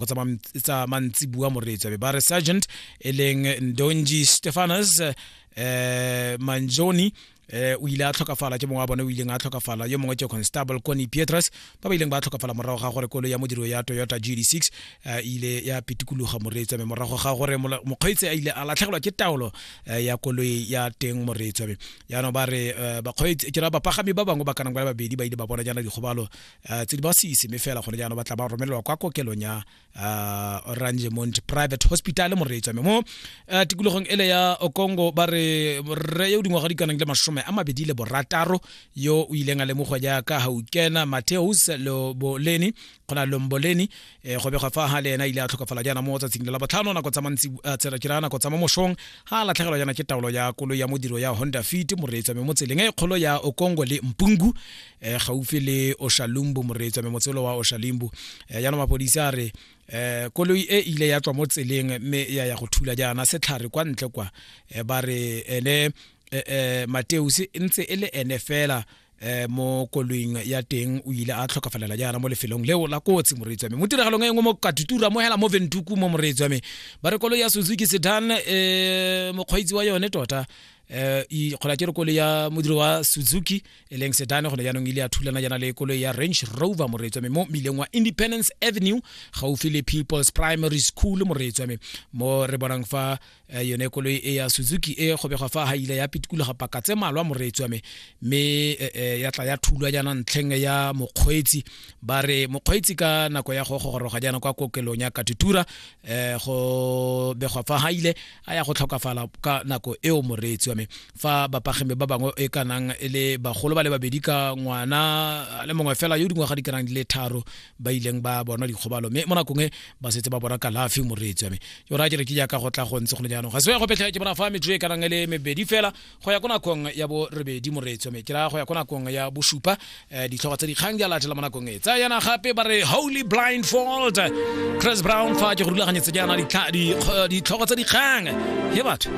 go tsa mantsibua moreetsabe ba re sergeant e leng ndonji stefanus eh manjoni eh o ile a tlhokafala ke mongwe wa bone o ileng a tlhokafala yo mongwe ke constable coni pietrus ba ba ileng ba tlhokafala morago ga gore kolo ya modiro ya toyota gd6 eh, ile ya pitikologa moreetswabe morago ga gore mokgweetsi a ile a latlhegelwa ke taolo eh, ya koloi ya teng moreetswabe yaanong ba re eh, bakgweetsi ke ra bapagami ba bangwe ba kanang ba le babedi ba ile ba bona jaana dikgobalo uh, tse di ba sise mme fela gone jaanong ba tla ba romelelwa kwa kokelong ya uh, orangemont private hospital moreetswa mme mo uh, tikologong ele ya okongo ba re rre yo o dingwaga di kanang le masome a mabedi le borataro yo o ileng a lemogwa jaaka gaukena mateus loboleni kgona lomboleni eh, go begwa fa ga le ena ile a tlhokafala jaana mo tsatsing le la botlhano nako tsa mantsi uh, tsela ke raya nako tsa mo mosong ga a latlhegelwa jaana ke taolo ya kolo ya modiro ya honda fit moreetswa mme mo tseleng e kgolo ya okongo le mpungu eh, gaufi le oshalumbu moreetso me motselo wa oshalimbu eh, jaanong mapodisi a re eh koloi e ile ya tswa mo tseleng mme ya ya go thula jaana setlhare kwa ntle kwa eh, ba re ene eh, eh, mateus e ntse e le ene fela eh mo koloing ya teng o ile a tlhokafalela jaana mo lefelong leo la kotsi moreetsi wa me mo tiragalong e nngwe mo katutura mo hela mo ventuku mo moreetsi wa me ba re koloi ya suzuki sedan eh mokgweetsi wa yone tota eh e kgola ke re kole ya modiro wa Suzuki e leng sedane gone jaanong ile ya thulana jana le koloi ya range rover moreetswa me mo mmileng wa independence avenue gaufi le peoples primary school moreetswa me mo re bonang fa eh, yone koloi e ya suzuki e kgobegwa fa ga ile ya pitikologa paka tse malwa moreetswa me mme eh, eh, ya tla ya thulwa jana ntlheng ya mokgweetsi ba re mokgweetsi ka nako ya go gogoroga jana kwa kokelong ya katutura eh, go begwa fa ga ile a ya go tlhokafala ka nako eo moreetsi wa me fa bapagemi ba bangwe e ka nang e le bagolo ba le babedi ka ngwana a le mongwe fela yo dingwaga di ka nang di le tharo ba ileng ba bona dikgobalo mme mo nakong e ba setse ba bona kalafi moreetsi wa me yo raya ke re ke jaaka go tla go ntse go le jaanong ga se ya go petlha ke bona fa metso e ka nang e le mebedi fela go ya ko nakong ya bo rebedi moreetso me ke ra go ya ko nakong ya bosupa um ditlhogo tsa dikgang di a latela mo nakong e tsa yana gape ba re holy blindfold chris brown fa ke go rulaganyetse jaana ditlhogo tsa dikgang he batho